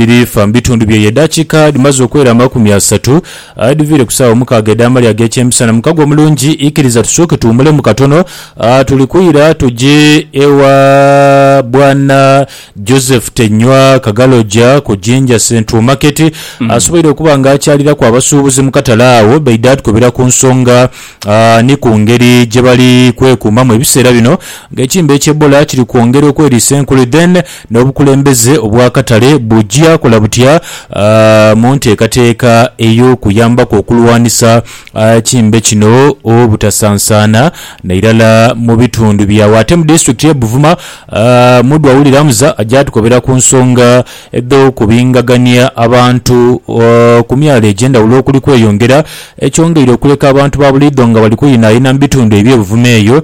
birifa mu bitundu by'eyo edhakiika dhimaze okwera amakumi asatu, aye dhiviire ku saawa omukaaga edh'amalya ag'ekyemisana. Mukago omulungi, ikiriza tusooke tuwumulemu katono. Tuli kwira tuje ewa Bwana Joseph Tenywa Kagaloja ku Jinja Central Market. Asoboire okuba nga akyaliraku abasuubuzi mu katale agho, baidha tukebera ku nsonga ni ku ngeri gyebali kwekuumamu ebiseera bino nga ekimbe eky'Ebola kiri kwongera okweriisa enkuli. Then. N'obukulembeze obw'akatale bugya kola butya mu nteekateeka ey'okuyambaku okulwanisa ekimbe kino obutasansaana nairala mu bitundu byagho. Ate mu disitulikiti ye Buvuma, Mudhwa Willy Ramza agya tukobera ku nsonga edh'okubingagania abantu ku myalo egy'endhawulo okuli kweyongera, ekyongeire okuleka abantu ba buliidho nga bali kuyinayina mu bitundu ebye Buvuma eyo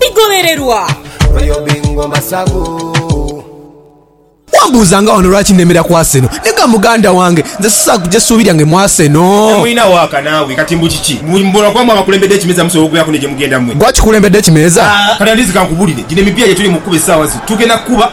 bigholererwa. Wambuuza nga wano lwaki nemera ku Arsenal? Nega muganda wange, nze sisobola kuja suubi lyange mu Arsenal. Temulina waaka naawe kati mbu kiki? Mbu mbona kuba mwe abakulembedde ekimeeza musobola okubeeraku ne gye mugenda mwe. Gwe akikulembedde ekimeeza? Kati andizi kankubulire, gino emipiira gye tuli mu kukuba essaawa zino tugenda kukuba.